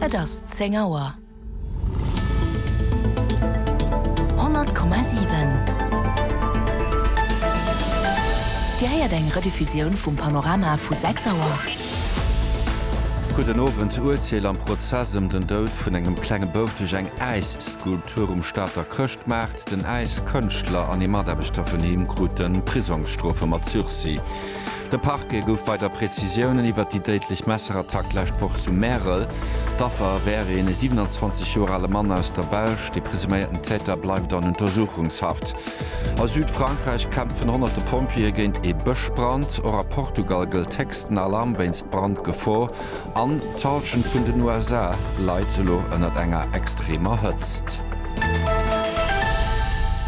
Et ass zéng Auer. Honnert Komma siwen. Dir héiert eng Rediffusioun vum Panorama vu sechs Auer. Gudden Owend. D'Uerteel am Prozess ëm den Doud vun engem klenge Bouf duerch eng Äisskulptur um Stater Chrëschtmaart. Den Äiskënschtler an ee Mataarbechter vun him krute Prisongsstrofe mat Sursis. De Parquet gouf weider Prezisiounen iwwert déi déidlech Messerattack d'lescht Woch zu Märel. D'Affer wär ee 27 Joer ale Mann aus der Belsch. De presuméierten Täter bleift an Untersuchungshaft. A Südfrankräich kämpfen honnerte Pompjeeë géint ee Bëschbrand. Och a Portugal gëllt héchsten Alarm wéinst Brandgefor. An d'Hallschent vun den USA leit elo ënnert enger extremer Hëtzt.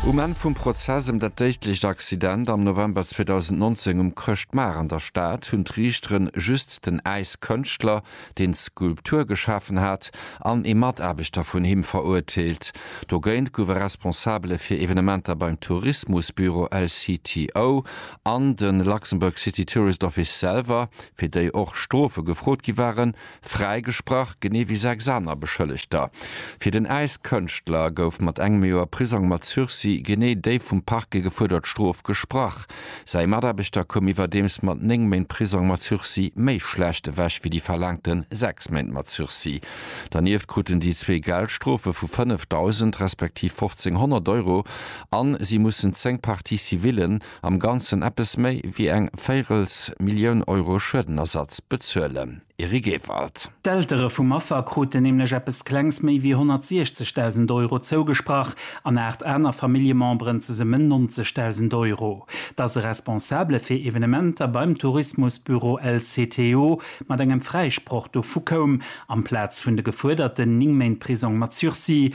Um Enn vum Prozess ëm dat déidlecht Accident am November 2019 um Chrëschtmaart an der Stad hunn d'Riichtere just den Äiskënschtler, deen d'Skulptur geschafen hat, an ee Mataarbechter vun him verurteelt. Dogéint gouf e Responsabele fir Evenementer beim Tourismusbüro LCTO an de Luxembourg City Tourist Office selwer fir déi och Strofe gefrot gi waren, fräigesprach, genee wéi sechs aner Beschëllegter. Fir den Äiskënschtler gouf mat engem Joer Prisong mat Sursis genee déi vum Parquet gefuerdert Strof gesprach. Säi Mataarbechter koum iwwerdeems mat néng Méint Prisong mat Sursis méi schlecht ewech wéi déi verlaangte sechs Méint mat Sursis. Dernieft kruten déi zwee Geldstrofe vu 5.000 respektiv 1.500 Euro a si mussen zéng Parties civillen, am Ganzen eppes méi wéi eng véirels Millioun Euro Schuedenersatz bezuelen. Eric Ewald. D'Eltere vum Affer kruten nämlech eppes klengs méi wéi 160.000 Euro zougesprach an aacht aner Familljememberen zesummen 90.000 Euro. Dass e Responsabele fir Evenementer beim Tourismusbüro LCTO mat engem Fräisproch dovu koum, amplaz vun de gefuerderten 9 Méint Prisong mat Sursis,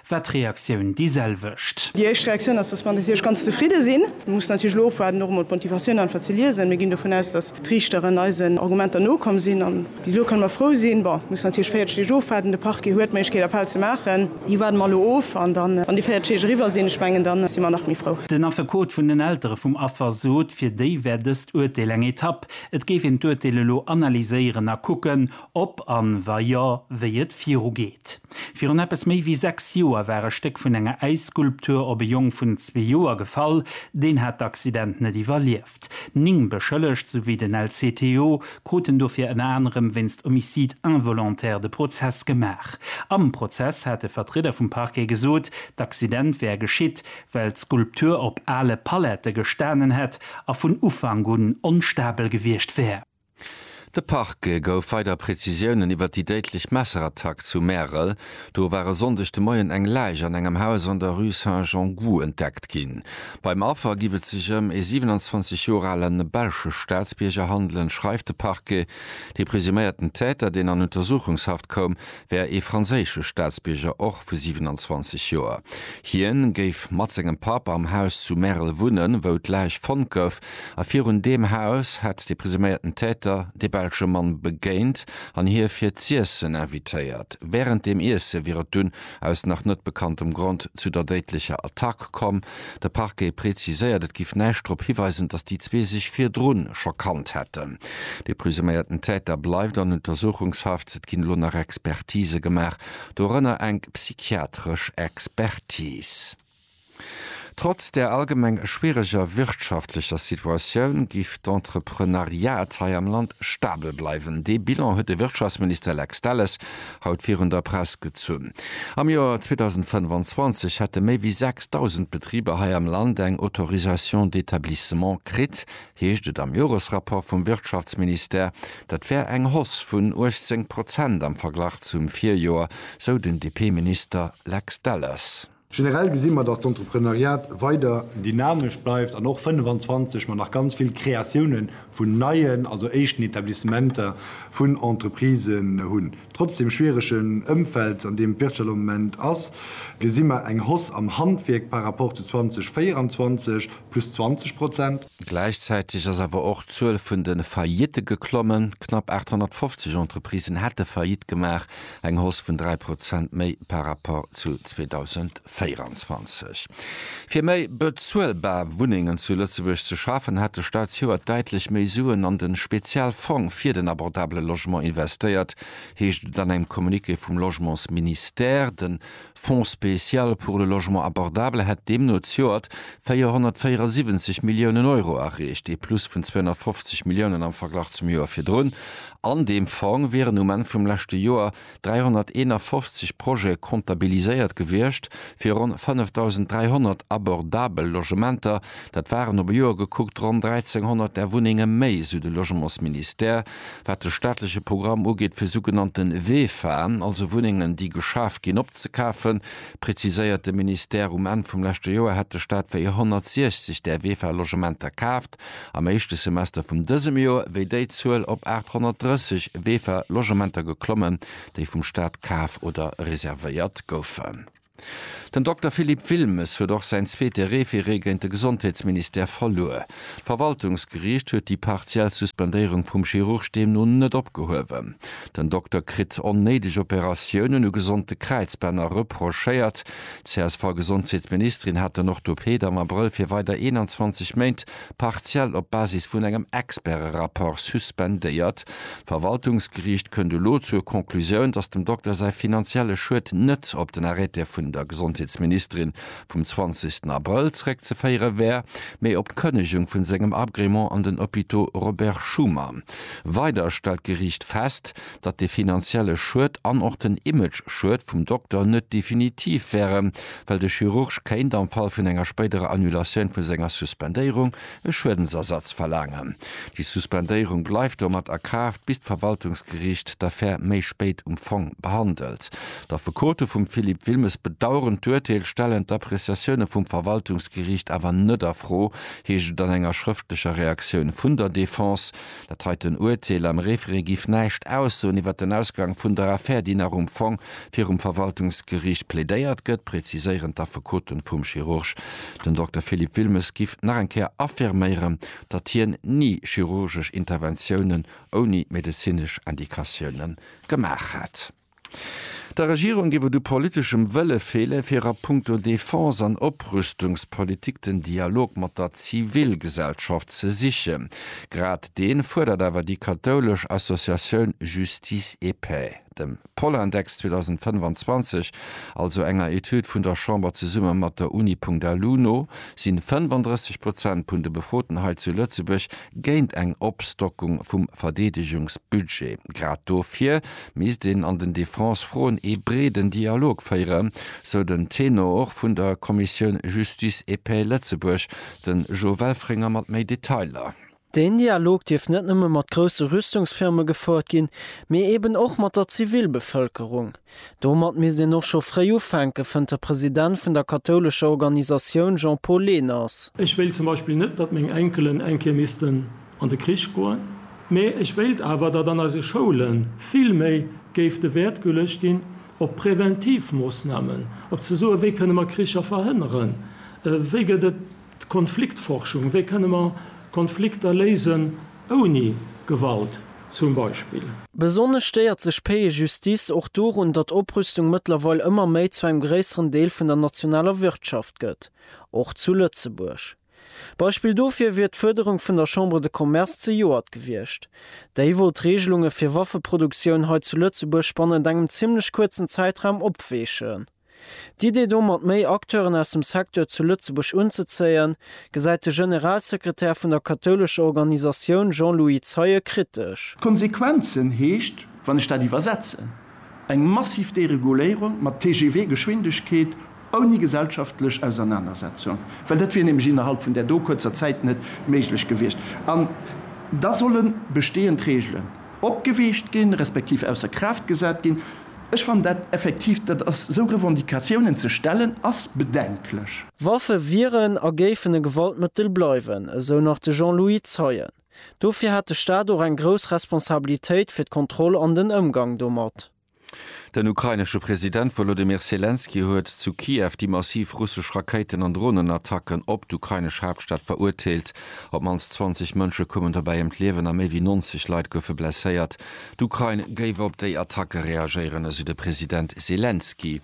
war d'Reaktioun déi selwecht. Déi éischt Reaktioun ass, dass mer natierlech ganz zefridde sinn. Mir mussen natierlech elo ofwaarden, och emol d'Motivatiounen einfach ze liesen. Mir ginn dovun aus, dass d'Riichteren eisen Argumenter nokomm sinn. A bis elo kënne mer frou sinn. Bon, et muss natierlech 40 Deeg ofwaarden. De Parquet huet d'Méiglechkeet, Appell ze maachen. Déi waarde mer elo of. An da, wann déi 40 Deeg eriwwer sinn, ech mengen, da si mer nach méi frou. Den Affekot vun den Eltere vum Affer sot, fir déi wär dëst Urteel eng Etapp. Et géif een d'Urteel elo analyséieren a kucken, ob an, wa jo, wéi et virugeet. Virun eppes méi wéi sechs Joer war e Stéck vun enger Äisskulptur op e Jong vun zwee Joer gefall. Deen hat d'Accident net iwwerlieft. Ning Beschëllegt souwéi den LCTO kruten dofir ënner anerem wéinst Homicide involontaire de Prozess gemaach. Am Prozess hat e Vertrieder vum Parquet gesot, d'Accident wär geschitt, well d'Skulptur op ale Palette gestanen hätt a vun Ufank un onstabel gewiescht wär. De Parquet gouf weider Prezisiounen iwwer déi déidlech Messerattack zu Märel. Do war e Sonndeg de Moien eng Läich an engem Haus an der Rue Saint-Jean-Gou entdeckt ginn. Beim Affer giff et sech ëm ee 27 Joer alen belsche Staatsbierger handelen, schreift de Parquet. De presuméierten Täter, deen an Untersuchungshaft koum, wär ee franséische Staatsbierger och vu 27 Joer. Hien géif mat sengem Papp am Haus zu Merl wunnen, wou d'Läich fonnt gouf. A virun deem Haus hätt de presuméierten Täter de belsche Mann begéint an hie fir z'iessen invitéiert. Wärend dem Iesse wier et dunn aus nach net bekanntem Grond zu der déidlecher Attack komm, De Parquet preziséiert, et giff näischt drop hiweisen, datt déi zwee sech virdrun scho kannt hätten. De presuméierten Täter bleift an Untersuchungshaft. Et ginn elo nach Expertise gemaach, dorënner eng psychiatresch Expertis. Trotz der allgemeng schwiereger wirtschaftlecher Situatioun giff d'Entrepreneuriat hei am Land stabel bleiwen. Dee Bilan huet de Wirtschaftsminister Lex Delles haut virun der Press gezunn. Am Joer 2025 hätte méi wéi 6.000 Betriber hei am Land eng Autorisation d'établissement kritt, heescht et am Joresrapport vum Wirtschaftsministère. Dat wär eng Hausse vun 18 Prozent am Verglach zum Virjoer, sou den DP-Minister Lex Delles. Generell gesi mer, datt d'Entrepreneuriat weider. Dynamesch bleift an och 25 mer nach ganz vill Kreatiounen vun neien, also éischten Etablissementer vun Entreprisen hunn. Trotz dem schwieregen Ëmfeld, an deem d'Wirtschaft am Moment ass, gesi mer eng Hausse am Handwierk par rapport zu 2024, plus 20 Prozent. Gläichzäiteg ass awer och d'Zuel vun de Faillitte geklommen. Knapp 850 Entreprisen hätte Faillite gemaach, Eng Hausse vun 3 Prozent méi par rapport zu 2024. Fir méi bezuelbar Wunnengen zu Lëtzebuerg ze schafen, hat de Staat zejoert däitlech méi Suen an de Spezialfong fir den abordabele Logement investéiert, heescht et an engem Communiqué vum Logementsministère. De Fonds spécial pour le logement abordable hätt deemno zjoert 474 Milliounen Euro erreecht, ee Plus vun 250 Milliounen am Verglach zum Joer virdrun. An deem Fong wieren um Enn vum leschte Joer 351 Projete comptabiliséiert gewiescht fir ronn 5.300 abordabel Logementer. Dat waren op e Joer gekuckt ronn 1.300 där Wunnenge méi, sou de Logementsministère. Wat de staatleche Programm ugeet fir sougenannte VEFA, also Wunnengen déi geschaf ginn, opzekafen, preziséiert de Ministère, um Enn vum leschte Joer hätt de Staat wéi 160 där VEFA-Logementer kaaft, am éischte Semester vum dësem Joer wéi déi Zuel op 830 VEFA-Logementer geklommen, déi vum Staat kaf oder reservéiert goufen. Den Dokter Philippe Wilmes huet och säin zweete Referé géint de Gesondheetsministère verluer. D'Verwaltungsgeriicht huet déi partiell Suspendéierung vum Chirurg deemno net opgehuewen. Den Dokter kritt onnéideg Operatiounen u gesonde Kräizbänner reprochéiert. D'CSV-Gesondheetsministerin hat den Orthopeed am Abrëll fir weider 21 Méint partiell op Basis vun engem Experte-Rapport suspendéiert. D'Verwaltungsgeriicht kënnt elo zur Conclusioun, datt dem Dokter säi finanzielle Schued net op den Arrêté vun der Gesondheetsministerin vum 20. Abrëll zeréckzeféiere wär, mee op d'Kënnegung vu sengem Agrement an den Hôpitaux Robert Schuman. Weider stellt d'Geriicht fest, datt de finanzielle Schued an och den Image-Schued vum Dokter net definitiv wären, well de Chirurg kéint, am Fall vun enger spéiderer Annulatioun vu senger Suspendéierung, e Schuedensersatz verlaangen. Déi Suspendéierung bleift domat a Kraaft, bis d'Verwaltungsgeriicht d'Affär méi spéit um Fong behandelt. D'Affekote vum Philippe Wilmes bedaueren d'Urteel, stellen d'Appreciatioune vum Verwaltungsgeriicht awer net a Fro, heescht et an enger schrëftlecher Reaktioun vun der Defense. Dat heiten Uerteel am Référé giff näischt aussoen iwwer den Ausgang vun der Affär, déi nach um Fong virum Verwaltungsgeriicht plädéiert gëtt, präziséieren d'Affekoten vum Chirurg. Den Dokter Philippe Wilmes giff nach eng Kéier affirméieren, datt hien ni chirurgesch Interventiounen ouni medezinesch Indikatioune gemaach hätt. Der Regierung géif et u politeschem Wëlle feele fir a punkto Defense an Oprüstungspolitik den Dialog mat der Zivilgesellschaft ze sichen. Grad dee fuerdert awer déi kathoulesch Associatioun Justice et Paix. Dem Polindex 2025, also enger Etüd vun der Chamber zesumme mat der Uni. Alu no, sinn 35 Prozent vun de Befroten hei zu Lëtzebuerg géint eng Opstockung vum Verdeedegungsbudget. Grad dofir misst een an den Defense-Froen ee breeden Dialog féieren, sou den Tenor vun der Kommissioun Justice et Paix Lëtzebuerg, de Jo Welfringer mat méi Detailer. Deen Dialog dierft net nëmme mat grousse Rüstungsfirme gefouert ginn, mee eben och mat der Zivilbevëlkerung. Domat misst een och scho fréi ufänken, fënnt de President vun der kathoulescher Organisatioun Jean-Paul Lehners. Ech wéilt zum Beispill net, datt meng Enkelen eng Kéier missten an de Krich goen, mee ech wéilt awer, datt an eise Schoule vill méi géif de Wäert geluecht ginn op präventiv Moossnamen, op ze soen, wéi kënne mer Kricher verhënneren, wéi gëtt et. D'Konfliktforschung, wéi kënne mer Konflikter léisen ouni Gewalt zum Beispill? Besonnesch stéiert sech d'Paix et Justice och dorun, datt Oprüstung mëttlerweil ëmmer méi zu engem gréisseren Deel vun der nationaler Wirtschaft gëtt, och zu Lëtzebuerg. Beispill dofir wier d'Fuerderung vun der Chambre de Commerce zejoert gewiescht. Déi wollt d'Reegelunge fir Waffeproduktioun hei zu Lëtzebuerg bannent engem zimmlech kuerzen Zäitraum opweechen. D'Idee domat méi Acteuren aus dem Secteur zu Lëtzebuerg unzezéien, gesäit de Generalsekretär vun der kathoulescher Organisatioun Jean-Louis Zeie kritesch. D'Konsequenzen heescht, wann ech dat iwwersetzen, eng massiv Dereguléierung mat TGV-Geschwindegkeet ouni gesellschaftlech Ausernanersetzung, well dat wier nämlech innerhalb vun där do kuerzer Zäit net méiglech gewiescht. An da solle bestehend Regelen opgeweecht ginn, respektiv ausser Kraaft gesat ginn. Ech fannen dat effektiv, dat ass, esou Revendicatiounen ze stellen, ass bedenklech. Waffe wieren a géifen e Gewaltmëttel bleiwen, esou nach de Jean-Louis Zeien. Dofir hätt de Staat och eng grouss Responsabilitéit fir d'Kontroll an den Ëmgang domat. Den ukrainesche President Wolodymyr Selenskyj huet zu Kiew déi massiv russesch Rakéiten an Dronenattacken op d'ukrainesch Haaptstad verurteelt. Op d'mannst 20 Mënsche koumen dobäi ëm d'Liewen a méi wéi 90 Leit goufe blesséiert. D'Ukrain géif op déi Attacke reagéieren, esou de President Selenskyj.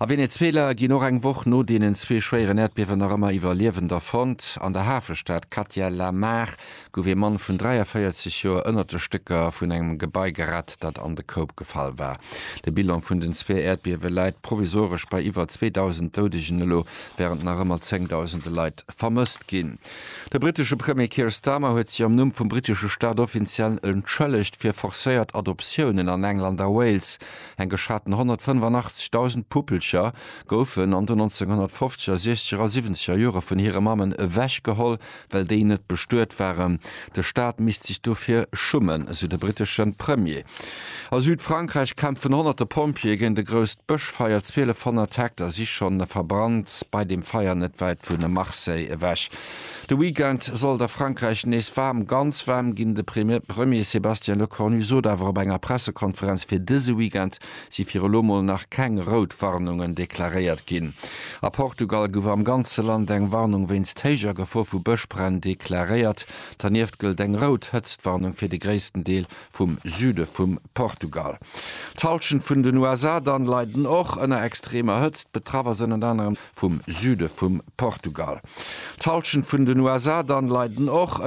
A Venezuela ginn och eng Woch no deenen zwee schwéieren Äerdbiewen nach ëmmer Iwwerliewender fonnt. An der Hafestad Katia La Mar gouf ee Mann vun 43 Joer ënnert de Stécker vun engem Gebai gerett, dat an de Koup gefall war. De Bilan vun den zwee Äerdbiewe läit provisoresch bei iwwer 2.000 Doudegen elo, wärend nach ëmmer zéngdausende Leit vermësst ginn. De brittesche Premier Keir Starmer huet sech am Numm vum brittesche Staat offiziell entschëllegt fir forcéiert Adoptiounen an England a Wales. Eng geschaten 185.000 Puppelcher goufen an den 1950er, siechzeger a siwwenzeger Jore vun hire Mammen ewechgeholl, well déi net bestuet waren. De Staat misst sech dofir schummen, esou de brittesche Premier. A Südfrankräich kämpfen honnerte Pompjeeë géint e grousst Bëschfeier. 1200 Hektar si schonn verbrannt, bei dem Feier net wäit vu Marseille ewech. De Weekend soll et a Frankräich nees waarm, ganz waarm ginn. De Premier Sébastien Lecornu sot awer op enger Pressekonferenz, fir dëse Weekend si fir elo mol nach keng rout Warnungen deklaréiert ginn. A Portugal gouf am ganze Land eng Warnung wéinst héijer Gefor vu Bëschbränn deklaréiert. Dernieft gëllt eng rout Hëtztwarnung fir de gréissten Deel vum Süde vum Portugal. D'Hallschent vun den USA dann leiden och ënner extremer Hëtzt. Betraff ass ënnert anerem vum Süde vum Portugal. D'Hallschent vun den USA dann leiden och.